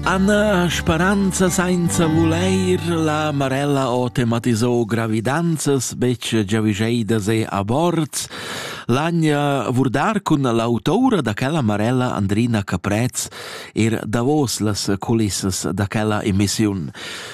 Anna speranza sainza vuleir la Marella o tematisò gravidanzas betg giavischeidas e aborts, l'Agna vurdar cun l'autoura da quella Marella Andrina Caprez ir davos las culissas da quella emissiun.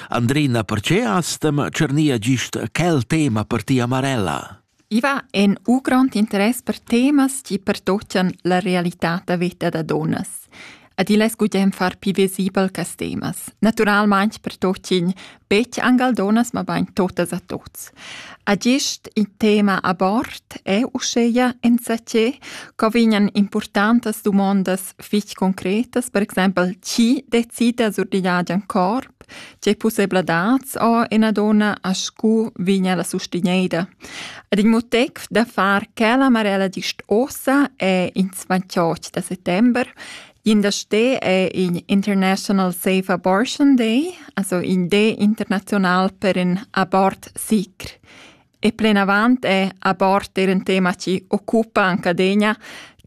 Andrina, perche astem cernia gist quel tema per tia Marella? I va en u grond interess per temas chi pertochan la realità da veta da dunnas. Ed il es gugent far pü visibel quist temas. Natüralmaing pertochin betg anc al dunnas, mabain totas a tuts. A gist il tema abort è uschea insatge co vegnan importantas dumondas fich concretas, per exaimpel chi decida sur digl agen corp, tge pussebladats ho ena donna a scu vigna la sustigneda. Ed il motiv da far quella marella gist ossa è ins 28 da settember. In da ste è in International Safe Abortion Day, also in day international per in abort sicr. E plenavant è a bord er in tema chi occupa anche adegna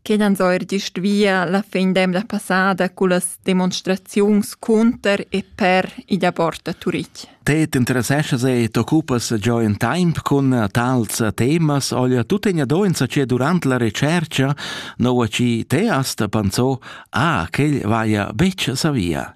che dann so er gist via la fin d'emna passada con las demonstraziuns cunter e per i da bord a Turich. Te t'interesseschas e t'occupas già in tempo con tals temas olha tu tegna doenza che durante la ricerca no a ci te asta pensò ah che vaia beccia sa via.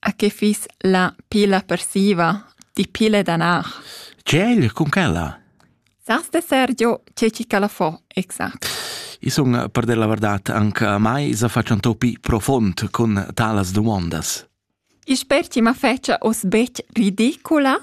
A che fiss la pila persiva? Di pile danar. Tgel, cun quella? Sas de Sergio, c'è ci calafò, exact. I sun, per dir la verdad, anche a mai se faccio un topi profond con talas domandas. I sper ci ma fece os bec ridicula?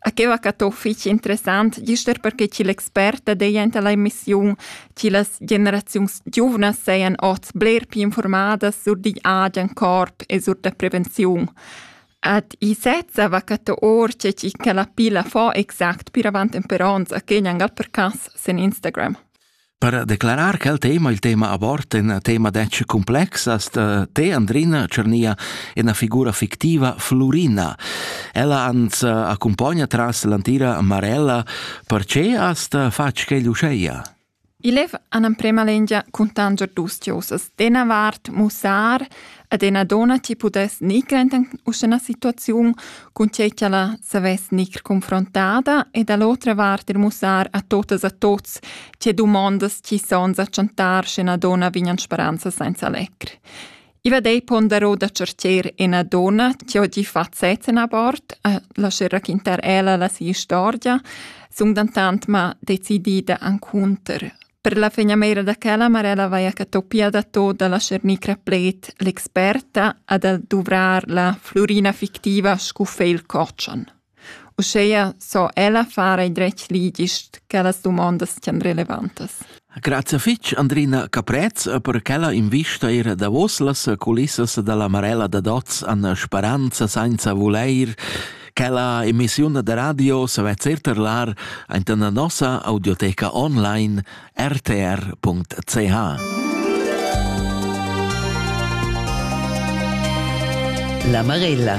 A que va cat ho fich interessant, gist er perche ch'il expert dat aint a la emissiun chi las generaziuns giuvnas sajan ots bler più informadas sur digl agen corp e sur da prevenziun. Ad i sezza va cat our che chi ca la pilla fo exact pir avant temper ons a que gnangal per cas sen Instagram. Per declarar quel tema, il tema abort, un tema detg complexas, te Andrina Cernia una figura fictiva Florina. Ella ans accompagna tras l'antira Marella, perché hast fatg quel usceia? Il lev an amprema lengia cuntanger dus diosas, de Navart, Mussar, Ed ena dona ti pudess nig render uschè ena situaziun, cun tgei che ella savess nig confrontada ed a l'otra vart er mussar a totas a tots tge dumondas chi sons a chantar sche ena dona vignan speranza senza lecr. Illa dei pondero da certier ena dona che ho di fazzets en abort, a lascer raquintar ella la sia storia, sun dentant ma decidida ancunter Per la fegnameira da quella Marella vaia catopia da tot da la Cernicra pled l'experta a da duvrar la flurina fictiva scu feil cotschan. Uscheia so ella fare dretg ligist che las dumondas tian relevantas. Grazie fitg Andrina Caprez per quella invista ir davos las culissas dalla Marella da Doz an speranza senza voleir Quella emissiun da radio sa vezer terlar anta la nossa audioteca online rtr.ch. La Marella